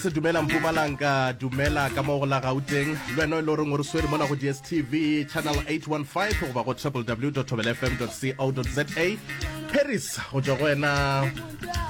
se dumela mpumalanga dumela ka mo go la gauteng le wena e le goreng o re swere mona go dstv channel 815 goba go www tobelfm co za paris go tswa go wena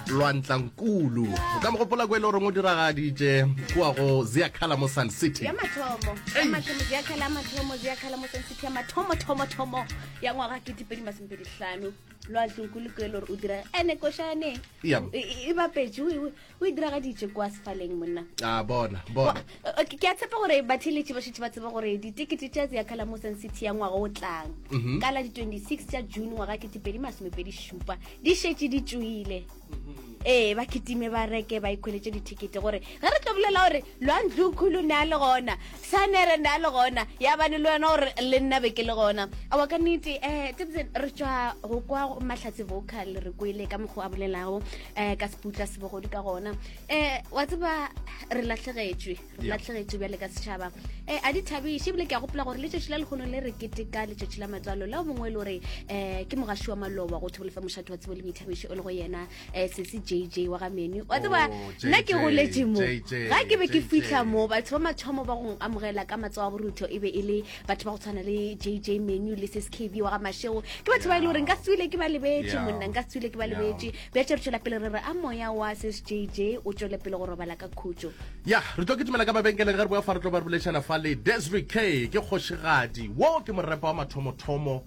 lwantlankulu o ka mo gopola ko e le goreng o diragaditše kua go ziakhala mo sun city ya mathomo ya Eish. mathomo ya khala ya mathomo ya khala mo sentse ya mathomo thomo thomo ya ngwaga ke dipedi masompe dihlano lo a tlong kule kele o dira ene koshane Yam. e e- e bapetše o e- o e diragaditše kwa sefaleng monna a ah, bona bona eh, ke a tshepa gore batheletše ba šetse ba tsebe gore ditekete tša tse ya kalamosan city ya ngwaga o tlang mhm. ka la di-26 tša june ngwaga ketepedi masomepedi šupa di šetse di tšoile mhm. ee ba ketime ba reke ba ikgweletše dithekete gore ge re tlo bolela gore Lwa Ndlukhulu ne a le gona? Sanere ne a le gona? Yabane le wena o re, Le nna be ke le gona. Aowa ka nnete. Um tsebetse re tšwa go kwa go Mahlatse Vocal, re kwele ka mokgwa o a bolelago um ka seputla se bogodu ka gona. Um wa tseba re lahlegetšwe, re Yeah. lahlegetšwe bjale ka setšhaba. Um a di thabiše ebile ke a gopola gore letšatši la lekgono le re keteka letšatši la matswalo la o mongwe e le gore um ke mogaši wa maloba go thobolofa mošate wa tsebo le boithabišo o le go yena um sese j j wa ga menu wa tseba oh, nna ke goletse mo ga ke be ke fitlha mo batho ba mathomo ba go amogela ka matsogo a borutho e be e le batho ba go tshwana le j j menu le sese kb wa ga mashego ke batho ba e le gore nka tswile ke ba lebetse monna nka tswile ke ba lebetse bja tša re tšwela pele re re a moya wa sese j j o tšwele pele go robala ka khutso ya re tlo ke tumela ka mabenkeleng ge re boa fa re tlo ba re bolešana fa le desri k ke kgošigadi wo ke morepa wa mathomothomo